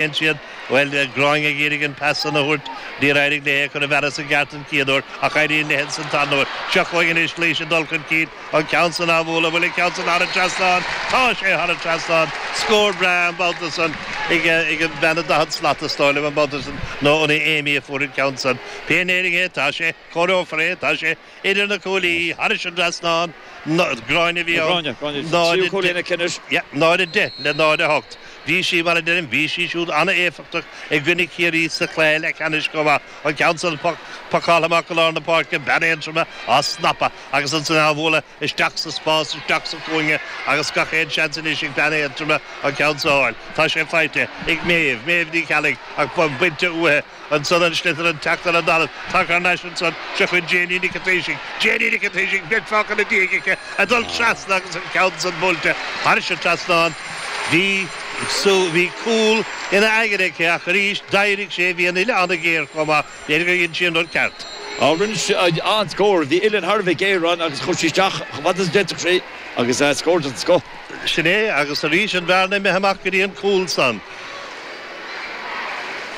Dhein siad. Bhuel, bhí an Gráinge ag iarraidh an pas san a thabhairt. Níor éirigh léi é a thabhairt sa gceart an chéad uair, ach éiríonn léi ansan an tarna huair. Seo chugainn anois Laoise ag dul chun cinn. An ceann san á bhualadh. Bhuel, an ceann san thar an trasnán. Tá sé thar an trasnán. Scór breá an babhta san ag an mbean ó daichead slat, is dóigh liom, an babhta sin, nó an é Amy a fuair an ceann san? Pé in Éirinn é, tá sé. Cóireofar é, tá sé. Idir na cuaillí, thairis an trasnán, gráinne a bhí ann. Gráinne, gráinne. Tríú cuaille lena cinn is. náid 10 le náid 8. Bhí sí, mar a deirim, bhí sí siúd an-éifeachtach i gcoinne Chiarraí sa chluiche leathcheannais chomh maith. An ceann san, pocáilte amach go lár na páirce, bean Aontroma á snapadh agus ansan á bhualadh isteach sa spás, isteach sa chúinge agus gach aon seans anois ag bean Aontroma an ceann san a fháil. Tá sé faighte ag Méabh, Méabh Ní Cheallaigh ach bainte uaithi. Ansan an sliotar ag teacht le talamh. Tagann thar n-ais ansan seo chugainn Janie Nic a Thaoisigh. Janie Nic a Thaoisigh, beirt-pháca ina diaidh aici ag dul trasna agus an ceann san buailte thairse an trasnán. Bhí sí, bhí cúl ina haigne aici ach arís d'éirigh sé bhí an uillinn ana-ghéar chomh maith. Léirigh gur dhein sí an rud ceart. Á, rinne sí an-scór. Bhí uillinn thar a bheith géar ann agus chuaigh sí isteach chomh fada is a d'fhéadfadh sí agus scór den scoth. Sin é, agus arís an bhearna imithe amach go dtí an cúl san.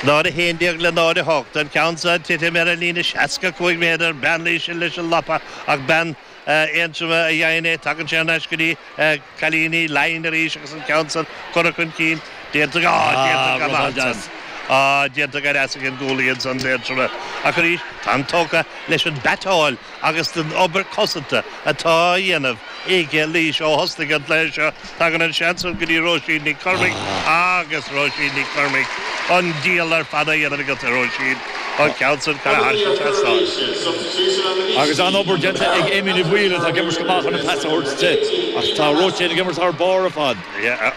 Náid 11 le náid 8. An ceann san ag titim ar an líne 65 méadar. Bean Laoise ansan leis an lapa, ach bean Aontroma a dhein é. Tagann sé anois go dtí cailíní Laighean arís agus an ceann san curtha chun cinn. Déantar go, á, déantar go maith ansan. Á, déantar go deas ag an gcúlaí ansan, d'Aontroma. Ach arís, táim tógtha leis an mbatáil. agus leis an obair cosanta atá á dhéanamh ag Laois, Ó thosnaigh an plé seo, tagann an seans ansan go dtí Róisín Nic Cormaic agus Róisín Nic Cormaic, an diabhal ar fad á dhéanamh ag Róisín. An ceann san curtha thar an trasnán. Agus an-obair déanta ag Amy Ní Bhaoill atá ag imirt go maith chun an pas a thabhairt di, ach tá Róisín ag imirt thar barr ar fad.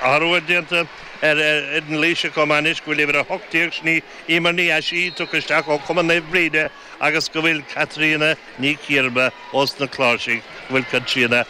Athrú déanta ar fhoireann Laoise chomh maith anois go bhfuil uimhir 18, sin í Eimear Ní Eisí, tugtha isteach ó Chumann Naomh Bríde, agus go bhfuil Caitríona Ní Chiarba ós na cláirsigh, go bhfuil Caitríona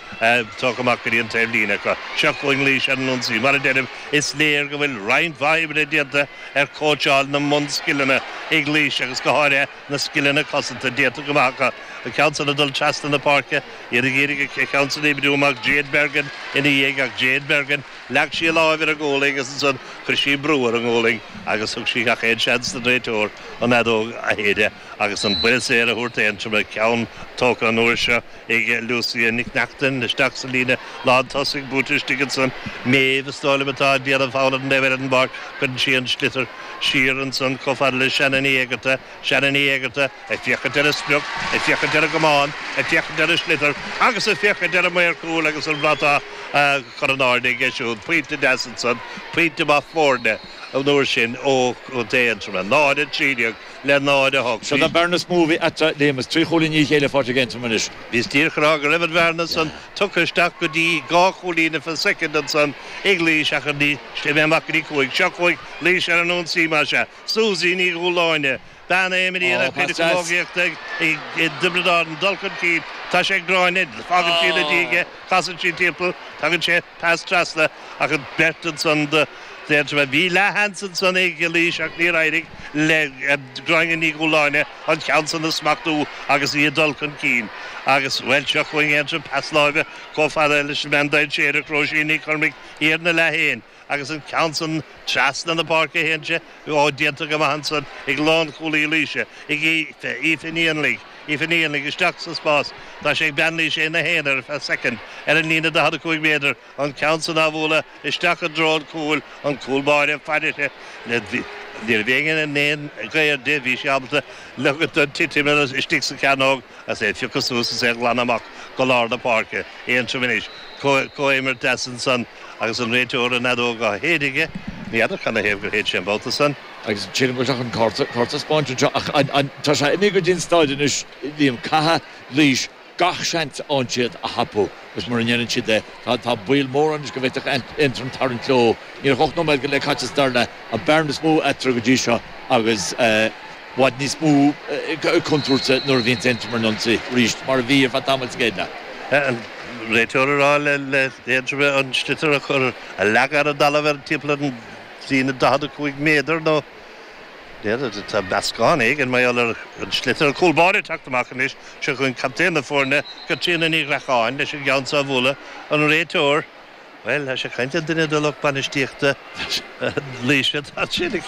tugtha amach go dtí an taobh líne acu. Seo chugainn Laois ar an ionsaí. Mar a deirim, is léir go bhfuil roinnt mhaith oibre déanta ar chóitseáil na mbunscileanna ag Laois agus go háirithe na scileanna cosanta déanta go maith acu. An ceann san ag dul trasna na páirce, iad ag iarraidh an ceann san a oibriú amach, Jade Bergin ina dhiaidh ach Jade Bergin, Leag sí a lámh ar an ngualainn agus ansan chuir sí brú ar an ngualainn agus thug sí gach aon seans don réiteoir an fheadóg a shéideadh agus an buille saor a thabhairt d'Aontroim an ceann tógtha an uair seo ag Lucia Nic Neachtain isteach sa líne lántosaigh buailte isteach ansan Méabh is dóigh liom atá ag déanamh fogha fén liathróid Cuireann sí an sliotar siar ansan chomh fada le Shannon Uí Éigearta Shannon Uí Éigearta ag féachaint ar an sprioc, ag féachaint ar an gcamán, ag féachaint ar an sliotar agus ag féachaint ar an maor cúil agus an bhratach a chur in airde aige siúd. Pointe deas ansan, pointe maith foirne an uair sin ó chontae Aontroma, 0, 13 le 0, 8. Seo í an bhearna is mó a bhí eatarthu, Liam, is trí chúilín i ndiaidh a chéile faighte ag Aontroim anois. Bhís díreach ag rá go raibh an bhearna san tugtha isteach go dtí dhá chúilín ar feadh soicind ansan ag Laois ach anois imithe amach go dtí cúig. Seo chugainn Laois ar an ionsaí, más ea, Suzy Ní Dhúláine, bean a imríonn a cuid camógaíochta i dTiobraid Árann, dul chun cinn, tá sé ag Gráinne, fágann sí ina diaidh é, casann sí timpeall, tugann sí, pas trasna, ach an beart ansan do bhean Aontroma. Bhí leathsheans ansan ag Laois ach níor éirigh le Gráinne Ní Dhúláine an ceann san a smachtú agus í ag dul chun cinn. Agus, bhuel, seo chugainn Aontroim pas láimhe chomh fada leis an mbean dainséarach, Róisín Nic Cormaic, thiar ina leath féin. agus an ceann san treasna na páirce a théann sé, ó, déanta go maith ansan ag lánchúlaí Laoise, ag Aoife, Aoife Ní Fhainligh, Aoife Ní Fhainligh, isteach sa spás, tá sé ag bean Laoise ina haonar ar feadh soicind, ar an líne 45 méadar, an ceann san á bhualadh isteach i dtreo an chúil, an cúl báire fairise, ní raibh éinne in aon ghaobhar di, bhí sí ábalta leogaint dó titim anuas, istigh sa chearnóg, agus é a phiocadh suas is é a ghlanadh amach go lár na páirce, Aontroim anois. comhimirt deas ansan agus an réiteoir an fheadóg á séideadh aige. Ní fheadar cad 'na thaobh gur shéid sé an babhta san. Agus shíleas go raibh sé chun cárta a spáint anseo ach an, an, tá sé imithe go dtí an staid anois, Liam, caithfidh Laois gach seans a fhaigheann siad a thapú agus mura ndéanann siad é, tá, tá baol mór ann anois go bhféadfadh Aontroim tarraingt leo. Níl ach ocht nóiméad go leith caite sa dara leath, an bearna is mó eatarthu go dtí seo agus, eh, bhfad níos mó contúirte nuair a bhíonns Aontroim ag ionsaí arís, mar a bhí ar feadh tamaill sa gcéad leath. Réiteoir ag rá le hAontroim an sliotar a chur a leagadh ar an dtalamh ar timpeall an líne 45 méadar nó tá meascán éigin mar gheall ar an sliotar an cúl báire ag teacht amach anois seo chugainn captaen na foirne Caitríona Ní Ghreacháin leis an gceann seo a bhualadh an réiteoir bhuel tá sé ag caint le duine de lucht bainistíochta Laoise tá sé